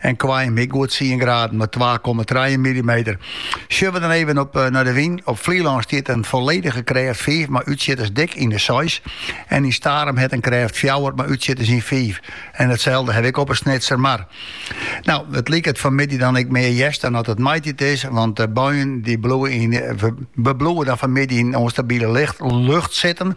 en Koarnjum ek goed tsien graden mar twa komma trije millimeter. Sjoch we dan even op eh, naar de wyn. Op Flylân stiet in folledige krêft 5 mei útsjitters dik yn de 6 en yn Starum hat in krêft 4 mei útsjitters yn 5. En itselde ha ik op 'e Snitser Mar. No, it liket fan 'e middei dan ek mear hjerst dan dat it maitiid is, want de buien dy bliuwe yn, eh, we bliuwe dan fan 'e middei yn ûnstabile lucht, lucht sitten.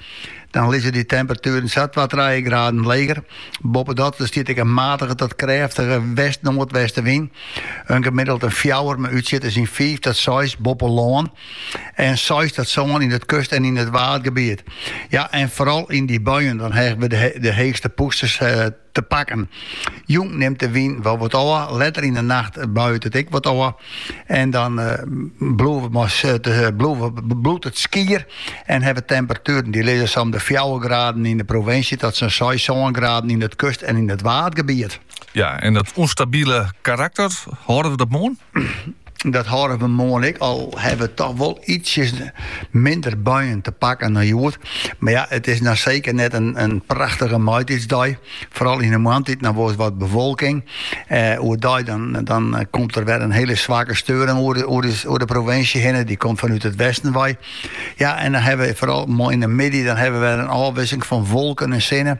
Dan lizze dy temperatueren sa twa, trije graden leger. Boppedat stiet ek in matige tot krêftige west-noardwestenwyn. In gemiddeld in fjouwer, mei útsjitters yn fiif tot seis boppe lân. En seis tot sân yn it kust en yn it waadgebiet. Ja, en foaral yn dy buien dan ha we de heechste pûsters. Eh, te pakken. Jûn nimt de wyn wol wat ôf, letter yn de nacht buit it ek wat ôf. En dan uh, bliuwt it skier en ha we temperatueren dy lizze sa om de 4 graden yn de provinsje tot sa'n 6, 7 graden yn it kust en yn it waadgebiet. Ja, en dat ûnstabile karakter, hâlde we dat moarn? Dat hâlde we moarn ek, al ha we toch wol ietsjes minder buien te pakken dan hjoed. Mar ja, it is noch seker net in, in prachtige maitiidsdei. Foaral yn de moarntiid, dan wol flink wat bewolking. Eh, oerdei dan, dan komt der wer in hiele swakke steuring oer de, oer de, oer de provinsje hinne. Dy komt fanút it westen wei. Ja, en dan ha we foaral yn de middei, dan ha we wer in ôfwikseling fan wolken en sinne.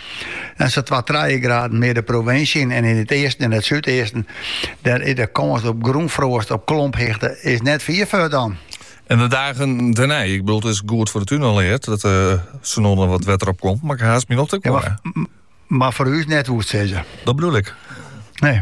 En sa twa trije graden mear de provinsje yn en yn it easten en it súdeasten. Dêr is de kâns op grûnfroast op klomphichte is net fier fuort dan. En de dagen dêrnei, ik bedoel, it is goed foar de tún uteraard dat uh, eh, der noch wat wetter op komt, mar ik ha ús mem noch te kommen. Ja, mar, mar, foar ús net wolst sizze. Dat bedoel ik. Nee.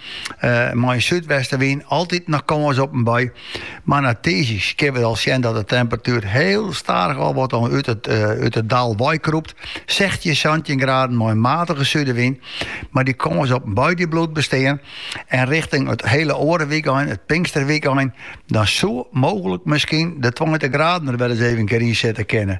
mei in súdwestewyn altyd noch kâns op in bui, mar nei tiisdei kinne we al sjen dat de temperatuer hiel stadich al wat út it dal weikrûpt. Sechstjin, santjin graden mei in matige súdewyn, mar dy kâns op in bui die bliuwt bestean. En richting it hiele oare wykein, it pinksterwykein, dan soe mooglik miskien de tweintich graden der wer ris even in kear yn sitte kinne.